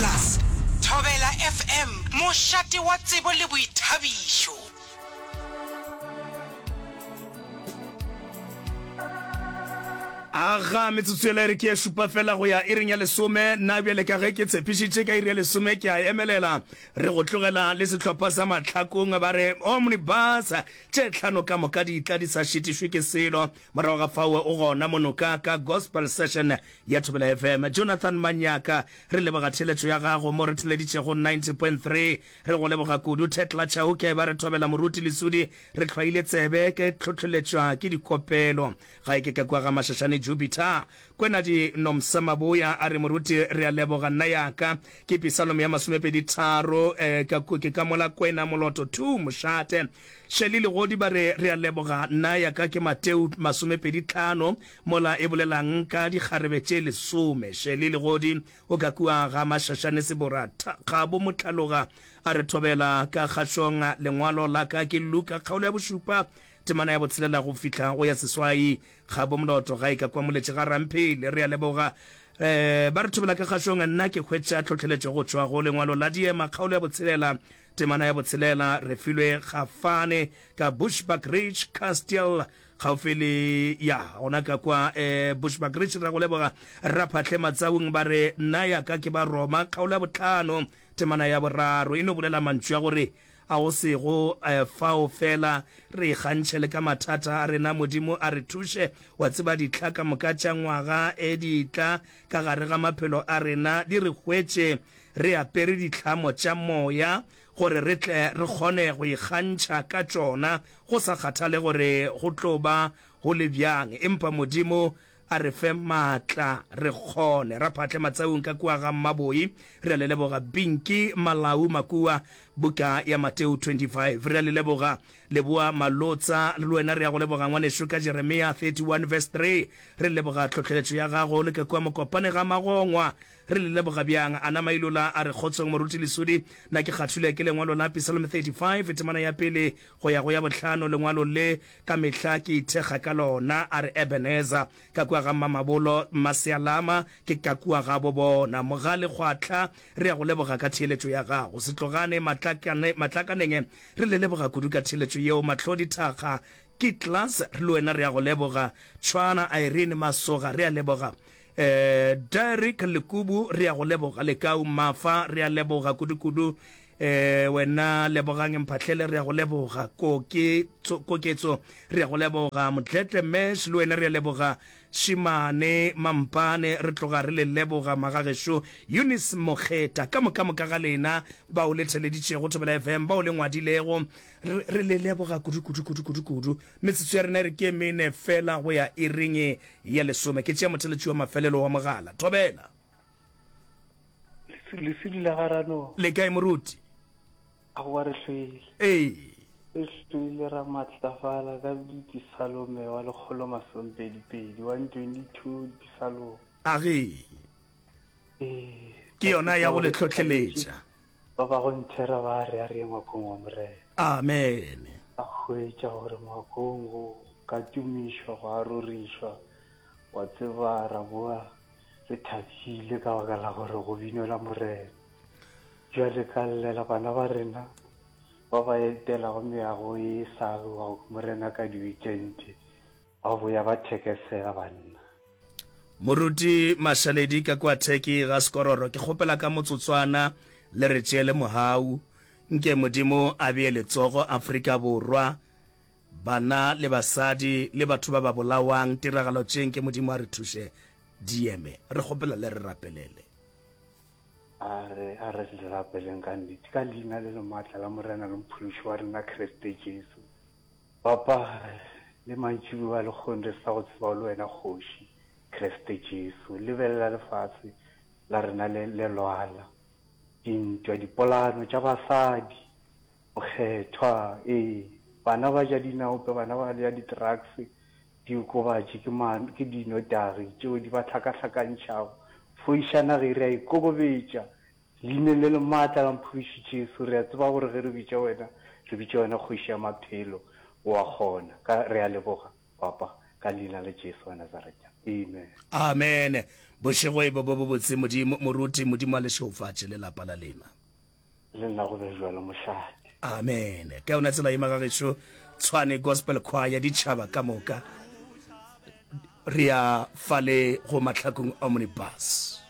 Plus. Thobela FM, mošate wa tsebo le boithabišo. Aga, metsotso yela e re ke ye šupa fela go ya iring ya lesome. Nna bjale ka ge ke tshepišitše ka iri ya lesome ke a emelela re go tlogela le sehlopha sa mahlakong ba re omnibus tše tlhano ka moka di tla di sa šitišwe ke selo morago ga faoe o gona monoka ka gospel session Ya Thobela FM, Jonathan Manyaka, re leboga theeletšo ya gago mo re theleditšego 90.3. Re go leboga kudu Thekla Chauke, ba re thobela moruti Lesudi, re hlwaile tsebe, ke tlhohloletšwa ke dikopelo. Ga e ke ka kwa ga Mashashane Jupiter. Kwenadi Nomsa Maboya a re moruti re a leboga nna ya ka ke Pisalome ya masomepedi tharo, ka ku ke ka mola kwena moloto thu mošate. Shelly Legodi ba re re a leboga nna ya ka ke Mateu masomepedi tlhano, Mola e bolela'ng ka dikgarebe tše lesome? Shirley Legodi o ka kua ga Mashashane Sebora, Tha, Kgabo Mohlaloga a re thobela ka kgašong Lengwalo la ka ke Luka kgaolo ya bošupa temana ya botshelela go fihla go ya seswai Kgabo Moloto ga e ka kwa moletše ga Ramphele re a leboga eh, ba re thobela ka kgašong Nna ke hwetša tlhohleletšo go tšwa go Lengwalo la Diema kgaolo ya botshelela temana ya botshelela re filwe Kgafane ka Bushbuckridge Castle gaufi le ya gona ka kwa um bushback rich ra go leboga raphatlhe matsaung ba re nna ya ka ke ba roma kgaolo ya botlhano temana ya boraro e no bolela mantšu a gore a go sego um fao fela re ikgantšhe le ka mathata a rena modimo a re thuše wa tseba ditlha ka moka tša ngwaga e ditla ka gare ga maphelo a rena di re hwetše re apere ditlhamo tša moya gore re tle re kgone go ikgantšha ka tšona go sa kgathale gore go tlo ba go le bjang. Empa Modimo a re fe maatla re kgone. Ra phatle matsaung ka kua ga Mmaboi. Re a le leboga Pinky Malau Makua, Buka ya Mateo 25. Re a le leboga Leboa Malotsa, le wena re a go leboga ngwanešu, ka Jeremia 31 verse 3. Re leboga tlhohleletšo ya gago le ka kua Mokopane ga Magongwa. Re le leboga bjang! A nama a ilola a re, Kgotsong, Moruti Lesudi. Na ke kgathulwe ke lengwalo la Psalm 35, temana ya pele go ya go ya bohlano? Lengwalo le ka mehla ke ithekga ka lona. A re, Ebenezer, ka kua ga Mmamabolo, Mmasealama, ke ka kua gabo bona. Mogale Kgwatla, re a go leboga ka theeletšo ya gago. Setlogane Matlakane, Matlakaneng, re le leboga kudu ka theeletšo yeo. Mahlodi Thakga, Kitlas, le wena re a go leboga. Tshwana Irene Masoga, re a leboga. Eh Derrick Lekubu re a go leboga. Lekau Mafa re a leboga kudu kudu. Eh wena Lebogang Mphahlele re a go leboga. Koke tso Koketso re a go leboga. Motletle Mash le wena re a leboga. Shimane Mampane re tloga re le leboga magagešo. Eunice Mokgeta ka moka moka ga lena bao le theleditšego Thobela FM bao le ngwadilego re re le leboga kudu kudu kudu kudu kudu. Metsotso ya rena e re ke e mene fela go ya iring ya lesome. Ke tšea motheletši wa mafelelo wa mogala. Thobela. Lesedi la ga Rano. Le kae moruti? Aowa re hloile. Ee. Re hloile ra matlafala ka Dipisalome wa lekgolo masompedi pedi, 122 Dipisalome. Age. Ee. Ke yona ya go le tlhohleletša. Ba ba go nthera ba a re a re ye ngwakong wa Morena. Amen. A hwetša gore ngwakong go ka tumišwa, go a rorišwa. Wa tseba, ra boa re thabile ka baka la gore go binelwa Morena. Bjale ka llela bana ba rena ba ba etelago meago e sa alwago Morena ka diwikente, Ba boya ba thekesela banna. Moruti Mashaledi ka kua Turkey ga Skororo ke kgopela ka motsotswana le re tšeele mohau. Nke Modimo a bee letsogo Afrika Borwa, bana le basadi le batho ba ba bolawang tiragalo tše nke Modimo a re thuše di eme. Re kgopela le re rapelele. A re a re le rapeleng ka nnete ka leina le le maatla la Morena le Mophološi wa rena Kriste Jesu. Papa, le mantšiboa a lekgong re sa go tseba le wena Kgoši, Kreste Jesu. Lebelela lefase la rena le, le lwala. Dintwa, dipolano tša basadi, bokgethwa, ee, bana ba ja dinaope, bana ba ja di-drugs, diokobatši, ke ma, ke dinotagi tšeo di ba hlakahlakantšhago. Foiša naga e re ya ikokobetša. Leineng le le maatla la Mphološi Jesu, re a tseba gore ge re bitša Wena, re bitša Wena Kgoši ya Maphelo, O a kgona. Ka, re a leboga, Papa, ka Leina la Jesu wa Nazareta. Amen. Amene. Bošego e be bo bobotse, Modimo. Moruti, Modimo a le šeufatše, le lapa la lena. Le nna go be bjalo, mošate. Amene. Ka yona tsela ye, Magagešo, Tshwane Gospel Choir, ditšhaba ka moka, re ya fale go mahlakong Omnibus.